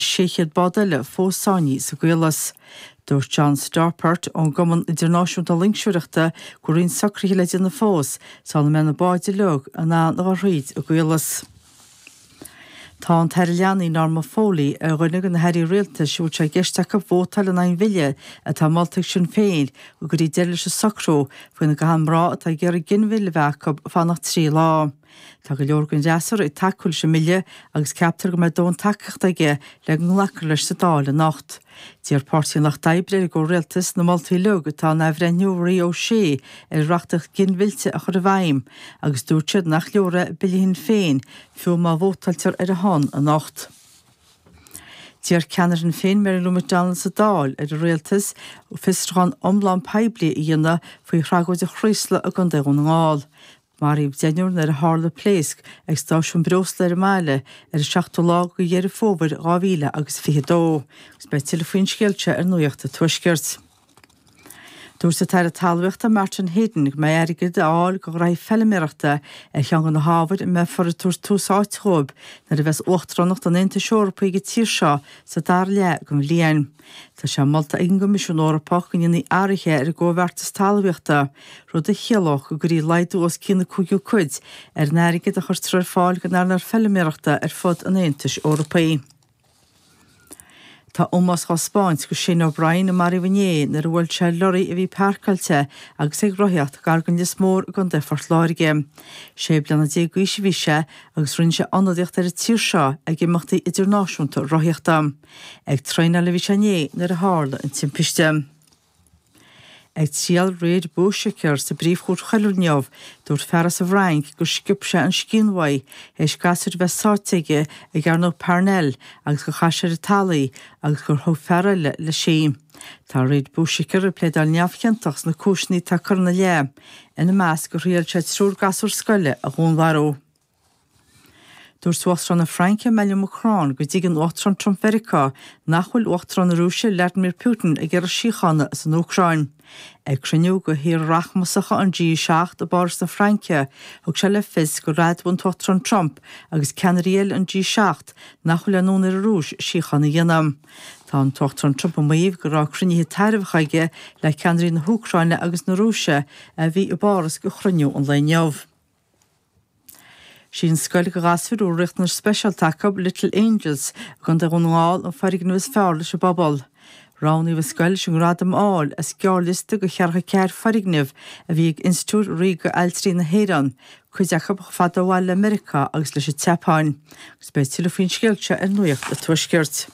600 bád eile fós sáinní sa gcaolas. Dúirt John Stawpert ón gCumann Idirnáisiúnta Loingseoireachta go bhfuil roinnt socruithe le déanamh fós sula mbeidh na báid uilig in ann a dhul thríd an gcaolas. Tá an tAire Leanaí Norma Foley ar dhuine de na hairí rialtais a bhfuil sé i gceist acu vótáil in aghaidh an bhille atá molta ag Sinn Féin go gcuirfí deireadh leis an socrú faoina gcaitheann mná atá ag iarraidh ginmhilleadh a bheith acu fanacht trí lá Tá go leor den Fhreasúra ag tacú leis an mBille agus ceaptar go mbeidh dóthain tacaíochta aige le go nglacfar leis sa Dáil anocht. D'iarr Páirtí an Lucht Oibre ar an gComhrialtas na moltaí uilig atá in athbhreithniú Mharie O'Shea ar an reachtaíocht ghinmhillte a chur i bhfeidhm agus dúirt siad nach leor é Bille Shinn Féin fiú má vótáiltear ar a shon anocht. D'iarr ceannaire Shinn Féin Mary Lou McDonald sa Dáil ar an Rialtas fiosrúchán iomlán poiblí a dhéanamh faoi thragóid an Chraoslaigh i gContae Dhún na nGall. Maraíodh deichniúr nuair a tharla pléasc ag stáisiún breosla ar an mbaile ar an seachtú lá de Dheireadh Fómhair 2000 agus 22 agus beidh tuilleadh faoin scéal seo ar Nuacht a' Tuaiscirt. Dúirt an tAire Talmhaíochta Martin Heydon go mbeidh airgead a fháil do ghnaithí feiliméarachta ar cheann de na hábhair a mbeifear ag tabhairt tús áite dhóibh nuair a bheas uachtaránacht an Aontais Eorpaigh ag an tír seo sa dara leath den bhliain. Tá sé molta ag an gCoimisiún Eorpach go ndéanfaí athruithe ar an gComhbheartas Talmhaíochta, rud a chiallódh go gcuirfí laghdú os cionn an cúigiú cuid ar an airgead a chuirtear ar fáil don earnáil feiliméarachta ar fud an Aontais Eorpaigh. Tá ómós á spáint do Shane O'Brien, a maraíodh inné nuair a bhuail sé lorraí a bhí páirceáilte agus é ag rothaíocht gar do Lios Mór i gContae Phort Láirge. Sé bliana déag d'aois a bhí sé agus rinne sé ionadaíocht ar an tír seo ag imeachtaí idirnáisiúnta rothaíochta. Ag traenáil a bhí sé inné nuair a tharla an timpiste. Ag triail Riad Bouchaker sa bPríomhchúirt Choiriúil inniu, dúirt fear as an bhFrainc gur sciob sé an scian uaidh théis gasúir bheith sáite aige i gCearnóg Parnell agus gur chaith sé ar an talamh í agus gur thug fear eile leis í. Tá Riad Bouchaker ag pléadáil neamhchiontach sna cúiseanna atá curtha ina leith, ina measc gur thriail sé triúr gasúr scoile a dhúnmharú. Dúirt Uachtarán na Fraince, Emmanuel Macron, go dtuigeann Uachtarán Trump Mheiriceá nach bhfuil Uachtarán na Rúise, Vladimir Putin, ag iarraidh síochána san Úcráin. Ag cruinniú de thíortha rachmasacha an G7 i bPáras na Fraince, thug sé le fios gur admhaigh an tUachtarán Trump agus ceannairí eile an G7 nach bhfuil aon fhonn ar an Rúis síocháin a dhéanamh. Tá an tUachtarán Trump ag maíomh go raibh cruinnithe tairbheacha aige le ceannairí na hÚcráine agus na Rúise a bhí i bPáras ag cruinniú an lae inniu. Sí an scoil do ghasúir a bhfuil riachtanais speisialta acu, Little Angels, i gContae Dhún na nGall an foirgneamh is fearr leis an bpobal. Roghnaíodh an scoil leis an ngradam a fháil as gearrliosta de cheathracha ceathar foirgneamh a bhí ag Institiúid Ríoga Ailtirí na hÉireann, cuid acu chomh fada ó bhaile le Meiriceá agus leis an tSeapáin. Agus beidh tuilleadh faoin scéal seo ar Nuacht a Tuaiscirt.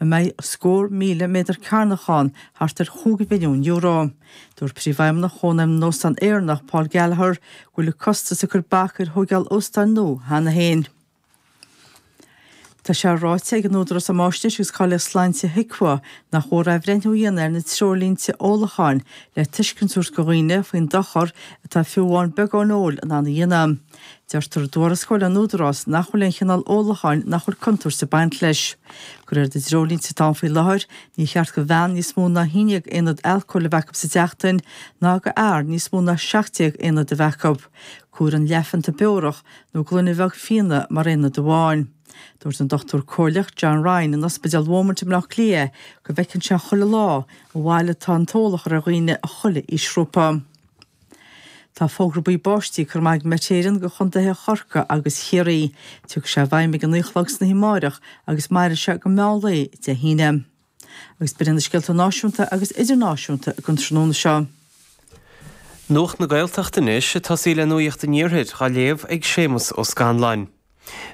a mbeidh scór míle méadar cearnach ann, thart ar chúig mhilliún euro. Dúirt Príomhfheidhmeannach Chónaidhm na nÓstán Éireannach, Paul Gallagher, go bhfuil an costas ag cur bac ar thóigeáil óstáin nua cheana féin. Tá sé ráite ag an Údarás um Fhaisnéis agus Cáilíocht Sláinte, HIQA, nach mór athbhreithniú a dhéanamh ar na treoirlínte ólacháin le tuiscint a thabhairt do dhaoine faoin dochar atá fiú amháin beagán óil in ann a dhéanamh. Deirtear i dtuarascáil an Údaráis nach bhfuil aon chineál ólacháin nach bhfuil contúirt ag baint leis. De réir na dtreoirlínte atá ann faoi láthair, ní cheart go bhean níos mó ná haon déag aonad alcóil a bheith acu sa tseachtain ná go fhear níos mó ná 17 aonad a bheith acu. Comhairtear leathphionta beorach nó gloine bheag fíona mar aonad amháin. Dúirt an Dr Comhairleach John Ryan in Ospidéal Beaumont i mBleá Cliath go bhfeiceann sé chuile lá an bhail atá an t-ól a chur ar dhaoine as chuile aoisghrúpa. Tá fógra buí báistí curtha amach ag Met Éireann go chontaetha Chorcaí agus Chiarraí. Tiocfaidh sé i bhfeidhm ag a naoi a chlog san oíche amáireach agus mairfidh sé go meán lae Dé hAoine. Agus b'in iad na scéalta náisiúnta agus idirnáisiúnta don tráthnóna seo. Nuacht na Gaeltachta anois ag tosaí le nuacht an Iarthair dhá léamh ag Séamus Ó Scanláin.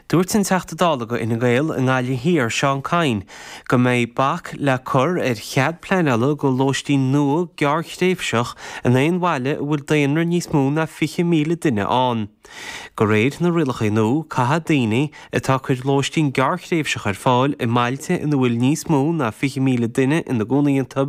Dúirt an Teachta Dála do Fhine Gael i nGaillimh Thiar, Seán Kyne, go mbeidh bac le cur ar chead pleanála do lóistín nua gearrthréimhseach in aon bhaile a bhfuil daonra níos mó ná 20,000 duine ann. De réir na rialacha nua, caithfidh daoine atá ag cur lóistín gearrthréimhseach ar fáil i mbailte ina bhfuil níos mó ná 20,000 duine ina gcónaí iontu,